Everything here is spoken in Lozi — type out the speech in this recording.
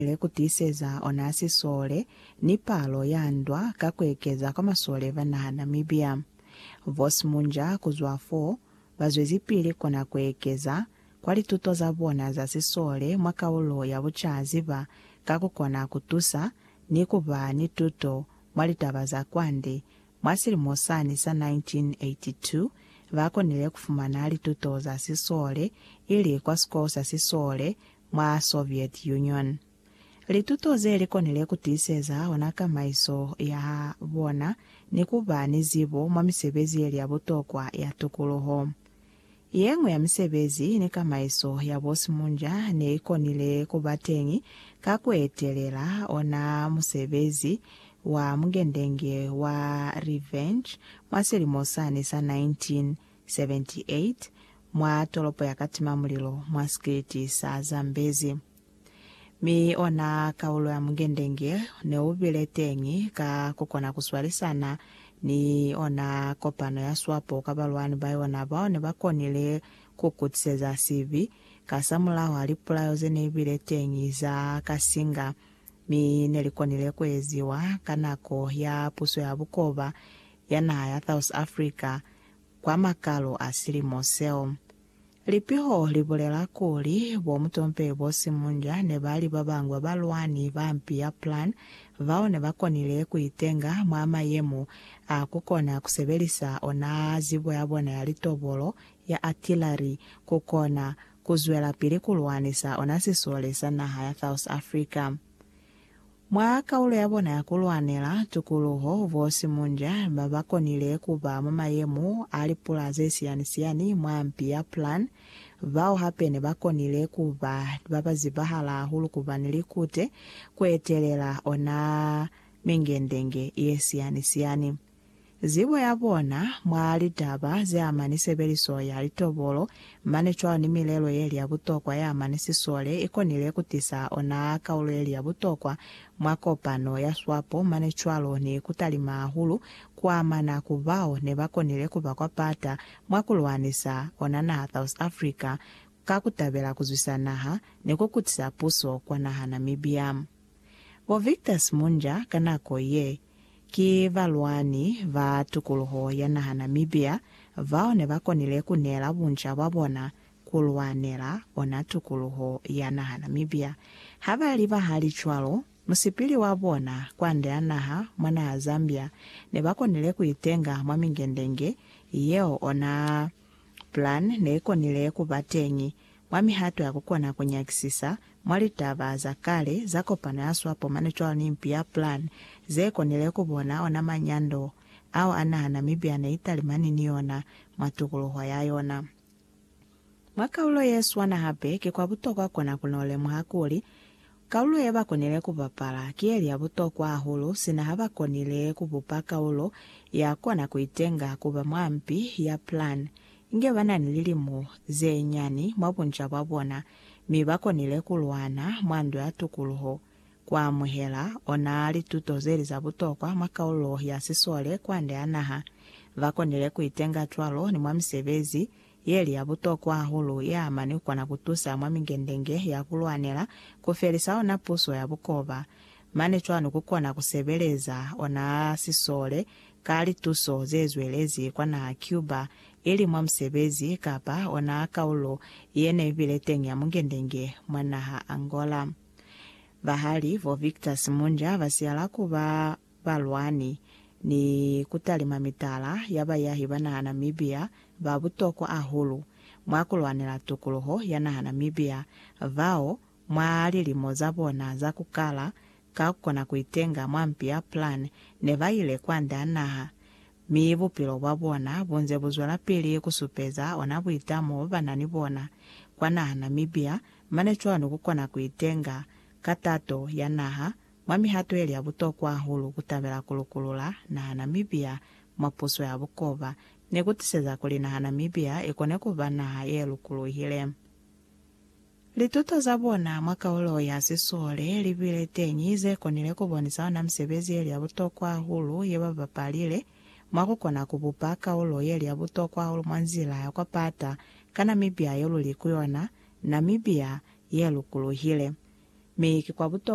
Lukile ku tiiseza ona sisole ni palo ya ndwa ka ku ekeza kwa masole ba naha Namibia. Vos Munja kuzwa fo, ba zwezipili kona ku ekeza kwa lituto za bona za sisole mwa kaulo ya bucazi ba ka ku kona ku tusa ni ku ba ni tuto mwa litaba za kwande. Mwa silimo sani sa 1982, ba konile ku fumana lituto za sisole ili kwa sikolo sa sisole mwa Soviet Union. Lituto ze li konile ku tiiseza ona kamaiso ya bona ni ku ba ni zibo mwa misebezi ye li ya butokwa ya tukuluho. Ye ñwi ya misebezi ni kamaiso ya bosimunja ne i konile ku ba teñi ka ku etelela ona musebezi wa mugendenge wa Revenge mwa silimo sani sa 1939. 78 mwa tolopo ya Katima-Mulilo mwa sikiliti sa Zambezi. Mi ona kaulo ya mungendenge ne u bile teñi ka ku kona ku swalisana ni ona kopano ya swapo ka balwani ba yona bao ne ba konile ku kutiseza sibi kasamulaho ha lipulayo ze ne bile teñi za kasinga mi ne li konile ku eziwa ka nako ya puso ya bukoba ya naha ya South Africa kwa makalu a silimo seo. Lipiho li bulela kuli, Bo Mutompe bo Simunja ne ba li ba bañwi ba balwani ba mpi ya Plan bao ne ba konile ku itenga mwa mayemo a ku kona ku sebelisa ona zibo ya bona ya litobolo, ya artillery, ku kona ku zwelapili ku lwanisa ona sisole sa naha ya South Africa. Mwa kaulo ya bona ya ku lwanela tukuluho, bo Simunja ba ba konile ku ba mwa mayemo a lipula ze siyani-siyani mwa mpi ya Plan, bao hape ne ba konile ku ba ba ba zibahala hahulu ku ba ni likute ku etelela ona mingendenge ye siyani-siyani. zibo ya bona mwa litaba ze ama ni sebeliso ya litobolo, mane cwalo ni milelo ye li ya butokwa ye ama ni sisole, i konile ku tisa ona kaulo ye li ya butokwa mwa kopano ya swapo, mane cwalo ni ku talima hahulu ku amana ku bao ne ba konile ku ba kwa pata mwa ku lwanisa ona naha South Africa ka ku tabela ku zwisa naha ni ku kutisa puso kwa naha Namibia. Bo Victor Simunja ka nako ye Ki balwani ba tukuluho ya naha Namibia bao ne ba konile ku neela bunca bwa bona ku lwanela ona tukuluho ya naha Namibia. Ha ba li bahali cwalo, musipili wa bona kwande a naha mwa naha Zambia ne ba konile ku itenga mwa mingendenge yeo ona Plan ne i konile ku ba teñi Mwa mihato ya ku kona ku nyakisisa, mwa litaba za kale za kopano ya swapo mane cwalo ni mpi ya Plan, ze konile ku bona ona manyando ao a naha Namibia ne i talimani ni ona mwa tukuluho ya yona. Mwa kalulo ye swana hape, ki kwa butokwa kona ku no lemuha kuli, Kaulo ye ba konile ku bapala ki ye li ya butokwa hahulu sina ha ba konile ku bupa kaulo ya kona ku itenga ku ba mwa mpi ya plan inge ba na ni lilimo ze nyani mwa bunca bwa bona mi ba konile ku lwana mwa Ndo ya Tukuluho. Ku amuhela ona lituto ze li za butokwa mwa kaulo ya sisole kwande ha naha, ba konile ku itenga cwalo ni mwa misebezi Yeli ya butokwa hahulu ya mane kona kutusa mwa mingendenge ya kulwanela kufelisa ona puso ya bukoba. Mane cwanu kukona kusebeleza ona sisole ka lituso zezwelezi kwa naha Cuba, ili mwa musebezi kapa ona kaulo yene ibile teñi ya mungendenge mwa naha Angola. Bahali bo Victor Simunja basiyala kuba balwani, ni kutalima mitala ya bayahi ba naha Namibia ba butokwa hahulu mwa kulwanela tukuluho ya naha Namibia, bao mwa lilimo za bona za kukala ka kukona kuitenga mwa mpi ya Plan ne ba ile kwande a naha, mi bupilo bwa bona bunze buzwelapili kusupeza ona buitamo banani bona kwa naha Namibia, mane cwalo ni kukona kuitenga ka tato ya naha Mwa mihato yeli ya butokwa hahulu, kutabela ku lukulula naha Namibia mwa puso ya bukoba ne ku tiseza kuli naha Namibia i kone ku ba naha ye lukuluhile. Lituto za bona mwa kaulo ya sisole li bile teñi ze konile ku bonisa ona misebezi yeli ya butokwa hahulu ye ba bapalile mwa ku kona ku bupa kaulo yeli ya butokwa hahulu mwa nzila ya kwa pata ka Namibia yo luli ku yona, Namibia ye lukuluhile. Mi ki kwa butokwa